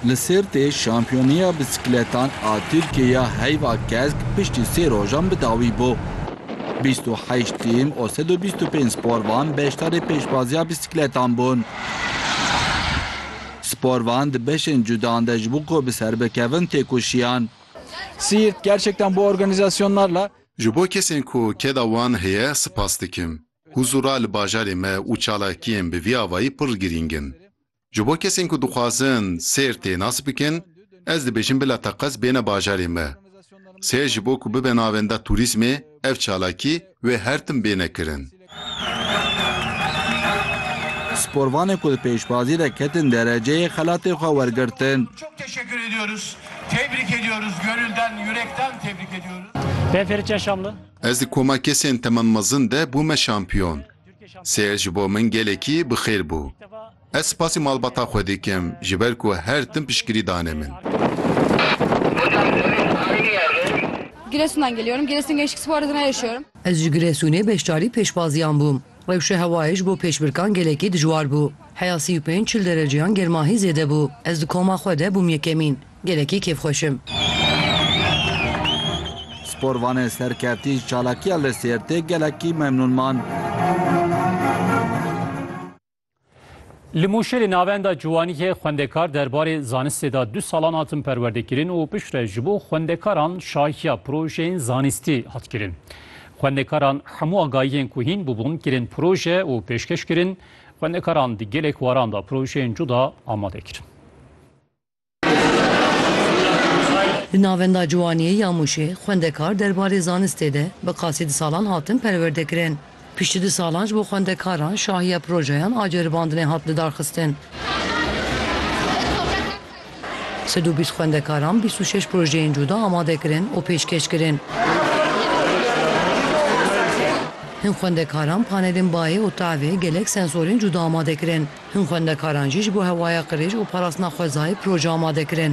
Li Sêrtê şampiyoniya bisikletan a Tirkiyeya heyva kesk piştî sê rojan bi dawî bû. Bîst û heşt tîm û sed û bîst û pênc sporvan beşdarê pêşbaziya bisikletan bûn. Sporvan di beşên cudan de ji bo ku bi ser bikevin têkoşiyan. Siirt gerçekten bu organizasyonlarla Ji bo kesên ku keda wan heye sipas dikim. Huzura li bajarê me û çalakiyên bi vî avayî pir girîng in. Ji bo kesên ku dixwazin sêr tê nas bikin, ez dibêjim bila teqez bêne bajarê me. Sêr ji bo ku bibe navenda tûrîzmê, ev çalakî wê her tim bêne kirin. Sporvanê ku di pêşbazî de ketin dereceyê xelatê xwe wergirtin. Ez di koma kesên teman mezin de bûme şampiyon. Sêr ji bo min gelekî bi xêr bû. Ez spasî malbata xwe dikim ji ber ku her tim piştgirî dane min. Ez ji Giresunê beşdarî pêşbaziyan bûm. Rewşa hewayê ji bo pêşbirkan gelekî dijwar bû. Heya sî û pênc çil dereceyan germahî zêde bû. Ez di koma xwe de bûm yekemîn. Gelekî kêfxweş im. Sporvanên serkeftî ji çalakiya li Sêrtê gelekî memnûn man. Li Mûşê li Navenda Ciwaniyê xwendekar derbarê zanistê de du salan hatin perwerdekirin û piştre ji bo xwendekaran şahiya projeyên zanistî hat kirin. Xwendekaran hemû agahiyên ku hîn bûbûn kirin proje û pêşkeş kirin. Xwendekaran di gelek waran de projeyên cuda amade kirin. Di Navenda Ciwaniyê ya Mûşê xwendekar derbarê zanistê de bi qasî di salan hatin perwerdekirin. Piştî du salan ji bo xwendekaran şahiya projeyan a ceribandinê hat lidarxistin. Sed û bîst xwendekaran bîst û şeş projeyên cuda amade kirin û pêşkêş kirin. Hin xwendekaran panelên bayê û tavê gelek sensorên cuda amade kirin. Hin xwendekaran jî ji bo hewaya qirêj û parastina xwezayê proje amade kirin.